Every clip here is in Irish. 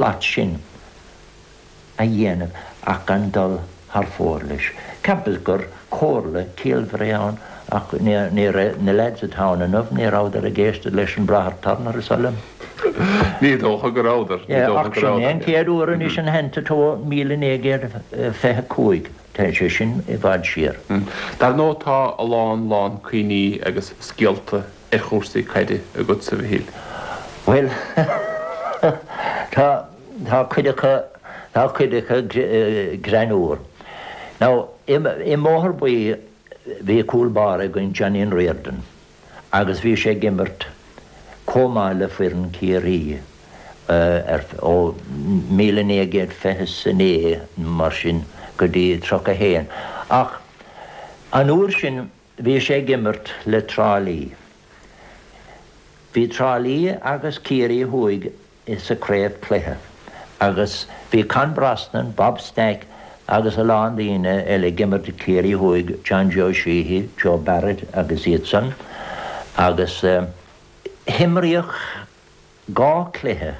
áit sin a dhéanamh ach gan dul thar fóir leis. Ceapas gur comhairle ciallmhar é ann ach ní raibh na leaids atá ann inniu, ní rabhadar ag éisteacht leis an Bráthair Turner, is oth liom. Ní dócha go rabhadar. Ní dócha go rabhadar. Ach sin é an chéad uair anois in thant atá míle naoi gcéad fiche cúig, tá sé sin i bhfad siar. Dar ndóigh tá a lán, lán cuimhní agus scéalta ar chúrsaí caide agatsa, a Mhichíl? Bhuel, tá, tá cuid acu, tá cuid acu greannmhar. Now, i, i mBóthar Buí bhí cúl báire againn Johnny Riordan agus bhí sé ag imirt chomh maith le foireann Ciarraí, ó míle naoi gcéad fiche 's a naoi nó mar sin go dtí tríocha haon ach an uair sin Bhí sé ag imirt le Trá Lí. Bhí Trá Lí agus Ciarraí Thuaidh sa craobhchluiche agus bhí Con Brosnan, Bob Stack agus a lán daoine eile ag imirt do Ciarraí Thuaidh, John Joe Sheehy, Joe Barrett agus iad san agus himríodh. Dhá chluiche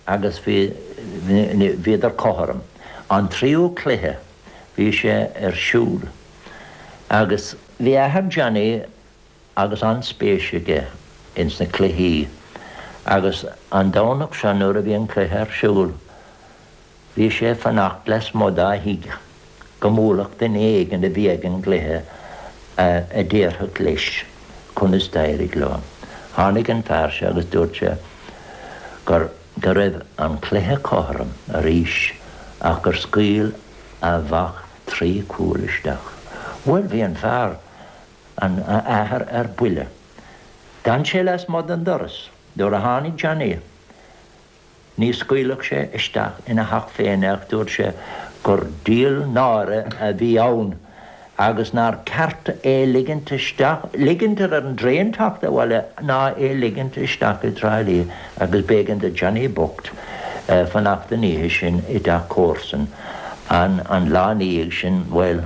agus bhíodar cothrom. An tríú cluiche bhí sé ar siúl agus bhí athair Johnny agus an-spéis aige ins na cluichí agus an Domhnach seo nuair a bhí an cluiche ar siúl Bhí sé ag fanacht lasmuigh dá thigh go mbuailfeadh duine éigin a bhí ag an gcluiche a déarfadh leis conas d'éirigh leo. Tháinig an fear seo agus dúirt sé go raibh an cluiche cothrom arís ach gur scaoil a mhac trí chúl isteach. Bhuel, bhí an fear, an t-athair, ar buile. D'fhan sé lasmuigh den doras nuair a tháinig Johnny. Ní scaoilfeadh sé isteach ina theach féin é ach dúirt sé gur díol náire a bhí ann agus nár ceart é ligint isteach, ligint ar an dtraein teacht abhaile ná é ligint isteach i dTrá Lí agus b'éigean do Johnny bocht fanacht an oíche sin i dteach comharsan an an lá ina dhiaidh sin. Bhuel,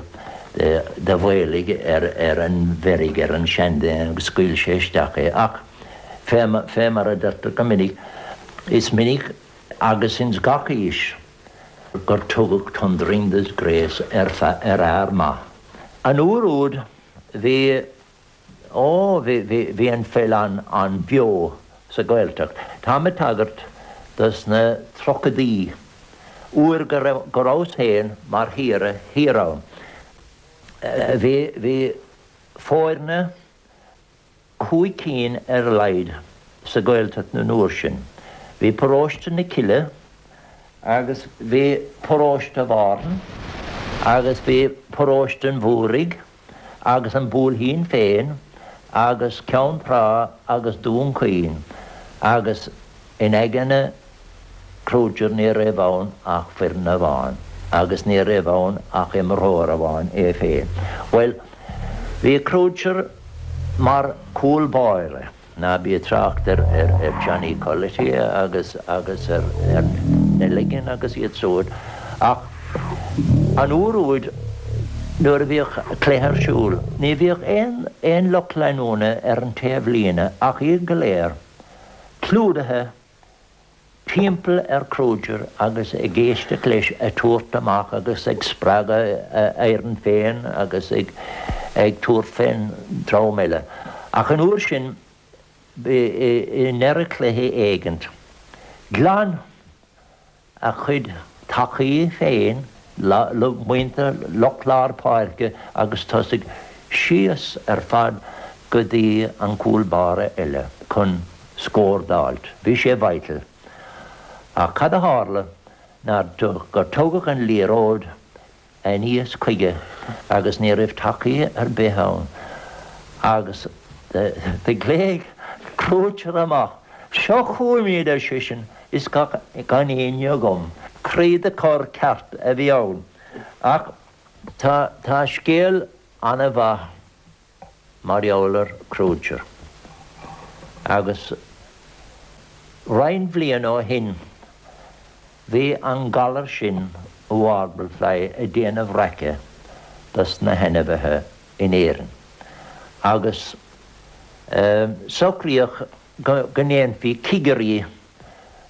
do mhaolaigh ar an bhfeirg, ar an seanduine, scaoil sé isteach é. Ach. Fé mar a deirtear go minic, is minic agus ins gach aois gur tugadh thundering disgrace ar fhear maith. An uair úd bhí, ó, bhí an pheil an-bheo sa Ghaeltacht. Táim ag tagairt do sna tríochaidí, uair go rabhas féin mar shaoire thiar ann. Bhí foirne. cúig cinn ar a laghad sa Ghaeltacht an uair sin. Bhí paróiste na Cille agus bhí paróiste Mhárthain agus bhí paróiste an Mhúraigh agus an Buailtín féin agus Ceann Trá agus Dún Chaoin agus in aigne Kruger ní raibh ann ach foireann amháin agus ní raibh ann ach imreoir amháin, é féin. Bhuel, bhí Kruger mar chúl báire, ná bí ag trácht ar Johnny Culloty agus ar Nelligan agus iad siúd, ach an uair úd nuair a bhíodh cluiche ar siúl, ní bhíodh aon lucht leanúna ar an taobh líne ach iad go léir clúdaithe timpeall ar Kruger agus ag éisteacht leis ag tabhairt amach agus ag spreagadh a fhoireann féin agus ag tabhairt fén dream eile. Ach an uair sin, ba i ndeireadh cluiche éigint, ghlan a chuid tacaí féin, muintir lucht lár páirce agus tosaigh síos ar fad go dtí an cúl báire eile chun scór d'fháilt. Bhí sé vital. Ach cad a tharla ná gur tugadh an liathróid aníos chuige agus ní raibh tacaí ar bith ann agus do ghlaoigh Kruger amach. Seo chugam iad, ar seisean, is gan éinne agam. Kruger ceart a bhí ann. Ach tá scéal ana-mhaith. mar gheall ar Kruger, agus roinnt bhliain ó shin bhí an galar sin warble fly ag déanamh raic dos na hainmhithe in Éirinn agus socraíodh go ndéanfaí cigirí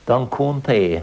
don contae